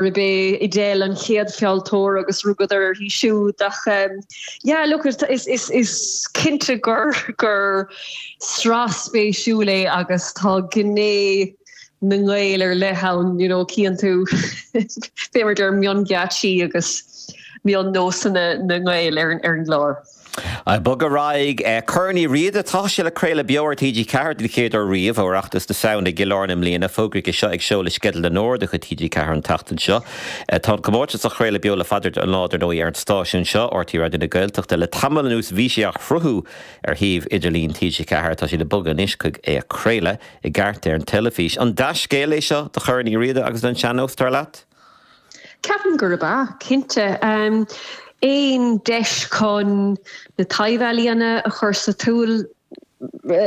raibh sé i dtaobh an chéad fealltóir agus rugadar uirthi siúd ach yeah look is is is cinnte gur gur sraith spéisiúil é agus tá gné na nGael ar leith ann you know cíonn tú b'fhéidir mionghéaitsí agus mion-nósanna na nGael ar ar an gclár. Ag bogadh ar aghaidh, Corn Uí Riada. Tá sé le craoladh beo ar TG4 den chéad uair riamh ó Oireachtas na Samhna i gCill Airne i mbliana. Fógraíodh é seo ag seoladh Sceideal na nÓg de chuid TG4 an tseachtain seo. Tá an comórtas á chraoladh beo le fada an lá, dar ndóigh, ar an stáisiún seo, RTÉ Raidió na Gaeltachta. Le tamall anuas bhí sé á shruthú ar shuíomh idirlín TG4. Tá siad ag bogadh anois chuig é a chraoladh i gceart ar an teilifís. An dea-scéal é seo do Chorn Uí Riada agus don sean-nós, dar leat? Ceapaim gurb ea, cinnte. Aon deis chun na taibh-ealaíona a chur sa tsiúl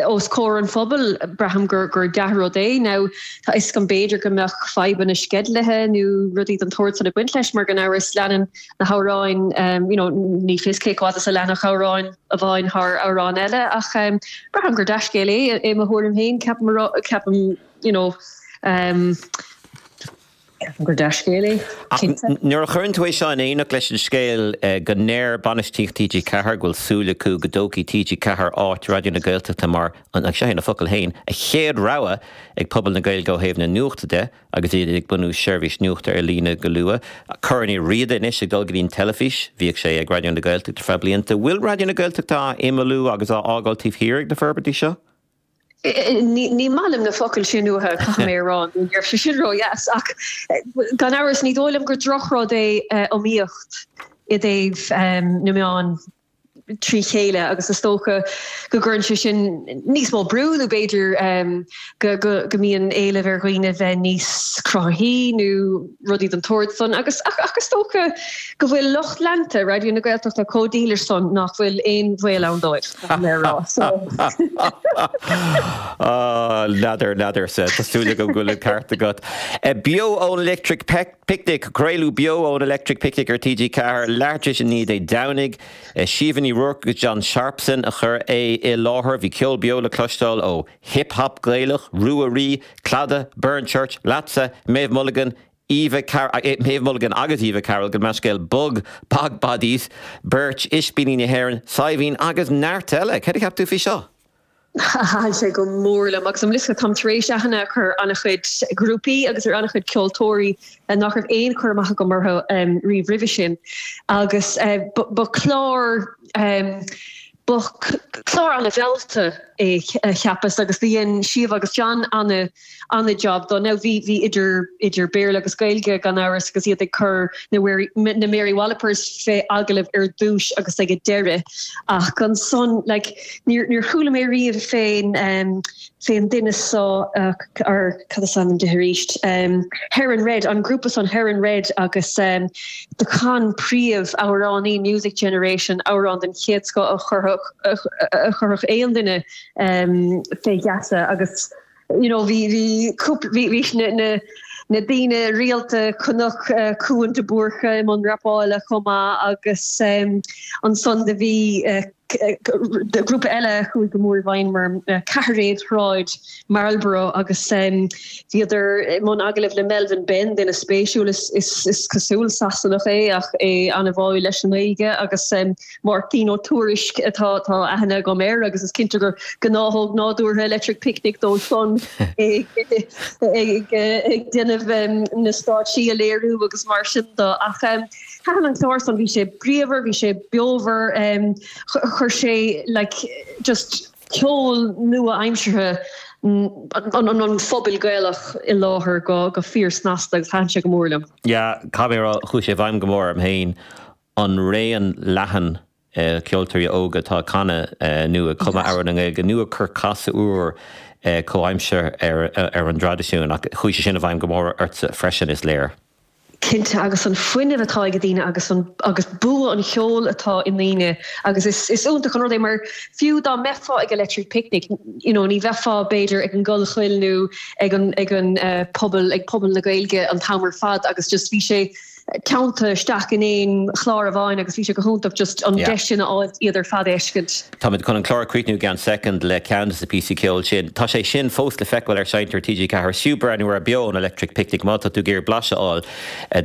os comhair an phobail, braithim gur dea-rud é. Tá a fhios agam, b'fhéidir, go mbeadh fadhbanna sceidlithe nó rudaí den tsórd san ag baint leis mar, gan amhras, leanann na hamhráin, you know, ní fios cé chomh fada is a leanfadh amhrán amháin thar amhrán eile ach braithim gur dea-scéal é, i mo thuairim féin. Ceapaim, you know. Ceapaim gur dea-scéal é, cinnte. Nuair a chuireann tú é seo in éineacht leis an scéal go ndeir bainistíocht TG4 go bhfuil súil acu go dtógfaidh TG4 áit Raidió na Gaeltachta mar, agus seo iad a bhfocail féin, an chéad rogha ag pobal na Gaeilge ó thaobh na nuachta de agus iad ag bunú seirbhís nuachta ar líne go luath, Corn Uí Riada anois ag dul go dtí an teilifís, bhíodh sé ag Raidió na Gaeltachta ar feadh blianta. Bhfuil Raidió na Gaeltachta á imeallú agus á fhágáil taobh thiar ag na forbairtí seo? Ní maith liom na focail sin uathu, caithfidh mé a rá, ní raibh sé sin ródheas, ach gan amhras ní dóigh liom gur drochrud é iomaíocht i dtaobh na meán trí chéile agus is dócha go gcuireann sé sin níos mó brú nó b'fhéidir go mbíonn éileamh ar dhaoine bheith níos cruthaithí nó rudaí den tsórd san agus ach is dócha go bhfuil lucht leanta Raidió na Gaeltachta chomh dílis san nach bhfuil aon bhaol ann dóibh, an mé a rá. So. Ah, nádúr, nádúr. Tá súil agam go bhfuil an ceart agat. Beo ón Electric Picnic, craoladh Beo ón Electric Picnic ar TG4 leathuair tar éis a naoi Dé Domhnaigh. Siobhán Ní Ruairc agus John Sharpson a chuir é i láthair. Bhí ceol beo le cloisteáil ó Hip Hop Gaelach, Ruadhraí, Clada, Burnchurch, Leatsa, Méabh Mulligan, Eva Car, Méabh Mulligan agus Eva Carroll, gabh mo leithscéal, Bog, Bog Bodies, Beirt, Ispíní na hÉireann, Saidhbhín agus neart eile. Céard a cheap tú faoi seo? Thaitin sé go mór liom agus an bhfuil a fhios agat, táim tar éis aithne a chur ar an-chuid grúpaí agus ar an-chuid ceoltóirí nach raibh aon chur amach agam orthu riamh roimhe sin agus ba chlár Ba chlár ana-mheallta é, cheapas, agus do dhein Síomha agus John ana-jab de. Now bhí idir Béarla agus Gaeilge, gan amhras, agus iad ag cur na Mary Wallopers fé agallamh ar dtúis agus ag a deiridh, ach ansan, like, níor chuala mé riamh fén duine so ar cad is ainm di arís? Heron Red, an grúpa san Heron Red agus do chan príomhamhránaí Music Generation amhrán den chéad scoth a chuirfeadh aon duine fé gheasa agus you know bhí bhí cúpla bhí bhí na na na daoine rialta ba chuma Cuan de Búrca i mbun rapála chomh maith agus ansan do bhí grúpa eile a chuaigh go mór i bhfeidhm orm Ceithearnaigh Shráid Marlborough agus bhíodar i mbun agallaimh le Melvin Benn, duine spéisiúil, is cosúil Sasanach é ach é ana-bháúil leis an nGaeilge, agus Máirtín Ó Tuairisc, atá aithne agam air agus is cinnte gur gnáthóg nádúrtha Electric Picnic dó san ag déanamh na stáitsí a léiriú agus mar sin do, ach Thaitin an clár san, bhí sé bríomhar, bhí sé beomhar, chuir sé like just ceol nua-aimseartha an phobail Gaelach i láthair go fíor snasta agus thaitin sé go mór liom. Yeah, caithfidh mé a rá, chuaigh sé i bhfeidhm go mór orm féin, an raon leathan ceoltóirí óga atá ag canadh nó ag cumadh amhrán i nGaeilge nó ag cur casadh úr comhaimseartha ar an dtraidisiún. Ach chuaigh sé sin i bhfeidhm go mór ortsa freisin, is léir. Cinnte, agus an fuinneamh atá ag daoine agus an, agus bua an cheoil atá i ndaoine agus is, is iontach an rud é mar fiú dá mbeifeá ag Electric Picnic, you know, ní bheifeá b'fhéidir ag an gCollchoill nó ag an, ag an, pobal, ag Puball na Gaeilge an t-am ar fad agus just bhí sé, teannta isteach in aon chlár amháin agus bhí sé go hiontach just an deis sin a fháilt iad ar fad a fheiscint. Táimid chun an clár a chríochnú i gceann soicind le ceann de na píosaí ceoil sin. Tá sé sin fós le feiceáil ar sheinnteoir TG4, Is fiú breathnú air Beo ón Electric Picnic má tá tú ag iarraidh blaiseadh a fháil